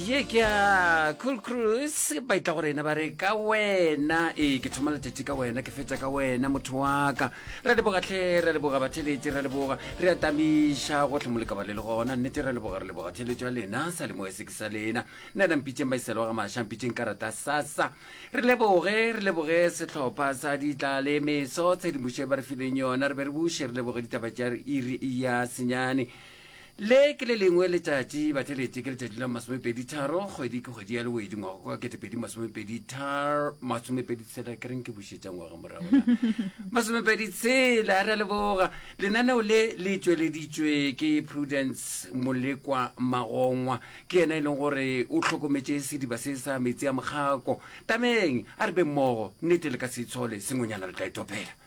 ye ke ya cool cruise ba itla go rena ba re ka wena ee ke thoma letšatši ka wena ke fetša ka wena motho wa ka re leboga tlhe re leboga batheletše re leboga re atamiša gotlhe mo lekaba le le gona nnete re leboga re leboga theletšo ya lena sa lemo se ke sa lena nna nampitšeng ba iselo ga maša mpitšeng ka rata sasa re leboge re leboge sehlopha sa ditla le meso tshedimošo e ba re fileng yona re be re buše re leboge ditaba tša iri ya senyane Le ke le lengwe letšatši, batheletše, ke letšatši la masomepeditharo, kgwedi ke kgwedi ya lewedi, ngwaga kwa ketepedi masomepedithar masomepedi tshela ke reng ke bušetša ngwaga morago na masomepedi tshela re a leboga lenaneo le le tšweleditšwe ke prudence molekwa magongwa ke yena e leng gore o hlokometše sediba se sa metsi a mokgako tameng a re be mmogo nnete le ka se itshole sengwenyana re tla e topela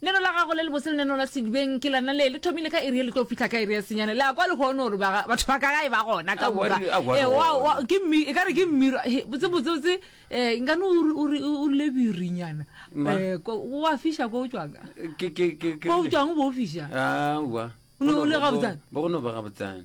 Neno la gago le lebose le neno la sedibeng ke lona le le thomile ka iri ye le tlo fihla ka iri ya senyane. Le a kwa lehono gore ba ga- batho ba ka ga e ba gona ka Aowa, moka. re- aowa, Eh, re wa- gona. wa- ke mmi- e ka re ke mmiro He, botse botse botse eh, nkane o re- o re- o rile birinyana Ma. Eh, ko- o a fiša ko o tšwang Ke- ke- ke- ke- ko o tšwang o bo o fiša aowa O ne o le gabotsana? bo go no ba gabotsana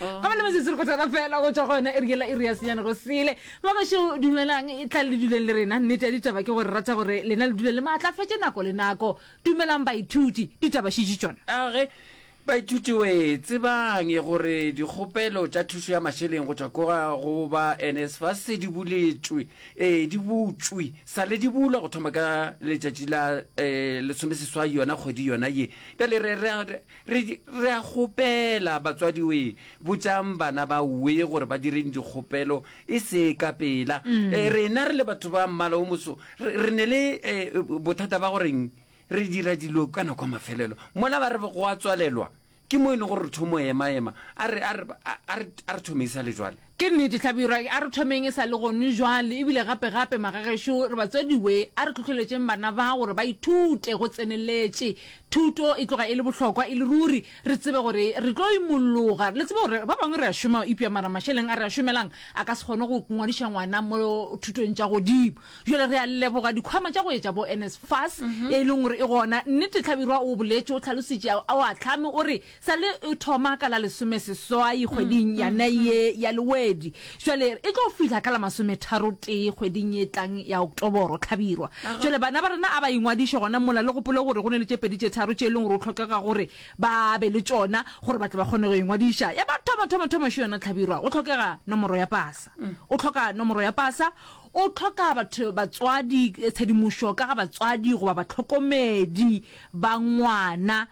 ga bana metsotso re go tsena fela go tswa go yona eri ela iri ya senyane go sele ba basho dumelang e tla le duleng le rena nnete ya ditaba ke gore rata gore lena le dule le maatlafetše nako le nako dumelang baithuti ditaba šitše tšona age baithuti we tsebang e gore dikgopelo tša thušo ya mašeleng go tšwa koga go ba nsfa se di buletšwe e di butšwe sa le di bulwa go thoma ka letšatši la um lesomeseswai yona kgwedi yona ye bjale re Re, re a kgopela, batswadiwee, botšang bana ba we gore ba direng dikgopelo, e se ka pela. E, rena re le batho ba mmala o moso, re, re ne le, e, bothata ba goreng re dira dilo ka nako ya mafelelo. Mola ba re go a tswalelwa, ke mo e lego gore re thomo ema-ema. A re, a re, a, a re, a re thomei sa le jwale. Ke nnete, hlabirwa a re thomeng e sa le gone jwale, e bile gape gape, magagešo, re batswadi we, a re hlohleletšeng bana ba gore ba ithute go tseneletše. Thuto e tloga e le bohlokwa e le ruri, re tsebe gore re tlo imolloga. Le tsebe gore ba bangwe re a šoma, eupša mara mašeleng a re a šomelang a ka se kgone go ngwadiša ngwana mo thutong tša godimo. Jwale re a leboga dikhwama tša go etša bo NSFAS, e leng gore e gona. Nnete, hlabirwa o boletše, o hlalositše, o ahlame, o re Sa le e thoma ka la lesomeseswai kgweding yana ye ya Lewedi, jwale e tlo fihla ka la masometharotee kgweding ye tlang ya Oktoboro, hlabirwa. Jwale bana ba rena a ba ingwadiše gona mola. Le gopole gore go na le tše pedi tše tharo tše e leng gore go hlokega gore ba be le tšona gore ba tle ba kgone go ingwadiša. Ya mathomathomathomašo yona, hlabirwa, go hlokega nomoro ya pasa. O hloka nomoro ya pasa, O hloka batho, batswadi, tshedimošo ka ga batswadi goba batlhokomedi ba ngwana.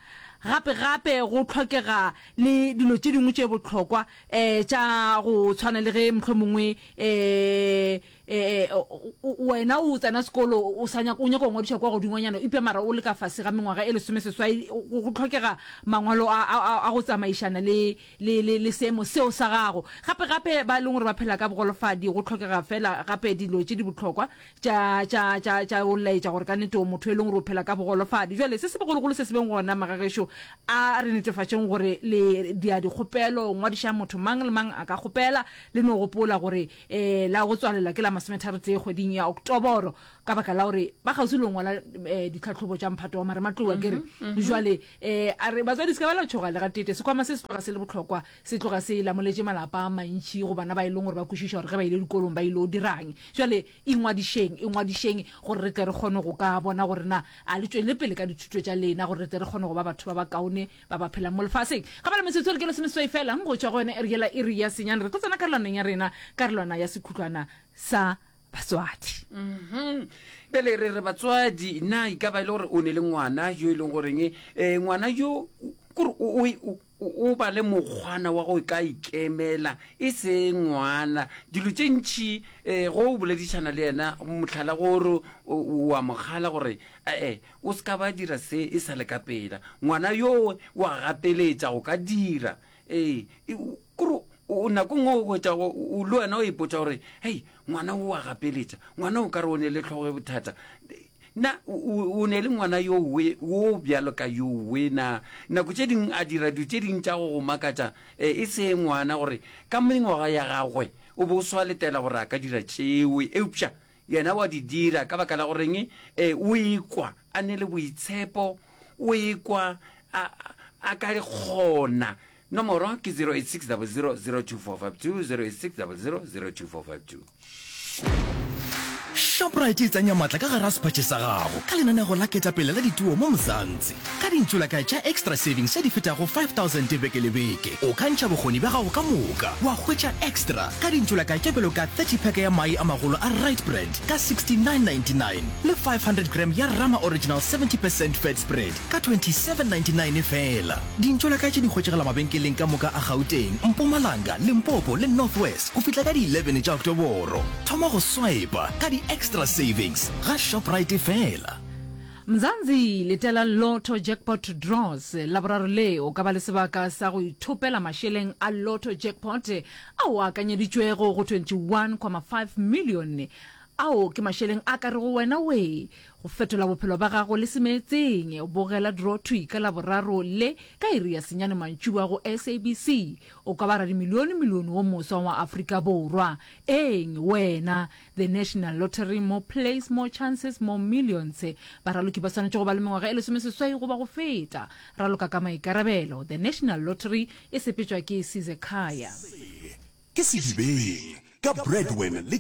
Gape gape go hlokega le dilo tše dingwe tše bohlokwa eh tša go tshwana le ge mohlomongwe eh eh wena o tsena sekolo o sa nyaka o nyaka go ngwadiša kwa godingwanyana eupša mara o le ka fase ga mengwaga e lesomeseswai go hlokega mangwalo a go tsamaišana le le, le, le seemo seo sa gago. Gape, gape, ba e leng gore ba phela ka bogolofadi, go tlhokega feela gape dilo tše di bohlokwa tša, tša, tša, tša go laetša gore ka nnete o motho e leng gore o phela ka bogolofadi. Bjale, se se bogologolo se se beng gona, magagešo, a re netefatšeng gore le dia dikgopelo, ngwadišang motho mang le mang a ka kgopela. Le no gopola gore e, la go tswalela ke la masometharotee kgweding ya Oktoboro, ka baka la gore ba kgauswi le go ngwala e, ditlhahlobo tša mphato wa marematlou, a ke re. Bjale, Ee, a re, Batswadi, se ka ba la tšhoga le ga tete. Sekhwama se se tloga se le bohlokwa, se tloga se lamoletše malapa a mantši go bana ba e leng gore ba kwešiša gore ge ba ile dikolong ba ile o dirang. Bjale ingwadišeng, ingwadišeng gore re tle re kgone go ka bona gore na a le tšwelele pele ka dithuto tša lena gore re tle re kgone go ba batho ba bakaone ba ba phelang mo lefaseng. Ga ba le metsotso e re ke lesomeseswai feela go tšwa go yone iri yela iri ya senyane. Re tlo tsena karolwaneng ya rena, karolwana ya sekhutlwana sa batswadi Mhm. bjale re re batswadi na e ka ba e le gore o ne le ngwana yo e leng goreng um ngwana yo o- kore o- o o- o- o ba le mokgwana wa go ka ikemela e se ngwana dilo tše ntšhi um go o boledišana le yena motlhala gore o wa mogala gore ee o se ka ba dira se e sa le ka pela ngwana yoo wa gapeletša go ka dira Ee, e, o- kore o o nakong o hwetša go- o le wena o ipotša gore hei ngwana o wa gapeletša ngwana o ka re o ne le tlhogo e bothata na o o- o ne le ngwana yo we wo bjalo ka yo we na nako tše dingwe a dira dilo tše dingwe tša go go makatša e e se ngwana gore ka mengwaga ya gagwe o be o swaletela gore a ka dira tšeo eupša Yena wa di dira. Ka baka la goreng? Ee, o ikwa a ne le boitshepo, o ikwa a, a ka kgona. Nomoro ke 086 00 02452, 086 00 02452. Shoprite e tsenya maatla ka gare ga sephatše sa gago ka lenaneo la Ketapele la Dituo mo Mzansi. Ka dintsulaka tša Extra Savings tše di fetago 5000 beke le beke, o ka ntšha bokgoni bja gago ka moka wa hwetša extra ka dintsulaka tše bjalo ka 30 pack ya mae a magolo a Right Brand ka 69.99 le 500 gram ya Rama Original 70 percent Fat Spread ka 27.99 feela. Dintsulaka tše di hwetšagala mabenkeleng ka moka a Gauteng, Mpumalanga, Limpopo le North West go fihla ka di 11 tša Oktoboro. Thoma go swiper ka di Extra Savings ga Shoprite feela. Mzansi, letela Lotto Jackpot Draws Laboraro le, o ka ba le sebaka sa go ithopela mašeleng a Lotto Jackpot ao a akanyeditšwego go 21,5 milione. Ao ke mašeleng a ka rego wena wee go fetola bophelo ba gago le semeetseng. Bogela Draw Thwi ka Laboraro le ka iri ya senyane mantšiboa go SABC. O ka ba radimilione-milione wo moswa wa Afrika Borwa. Eeng, wena! The National Lottery, More Plays, More Chances, More Millions. Baraloki ba swanetše go ba le mengwaga e lesomeseswai goba go feta. Raloka ka maikarabelo. The National Lottery e sepetšwa ke Sizekhaya. Se ke sedibeng ka Breadwin le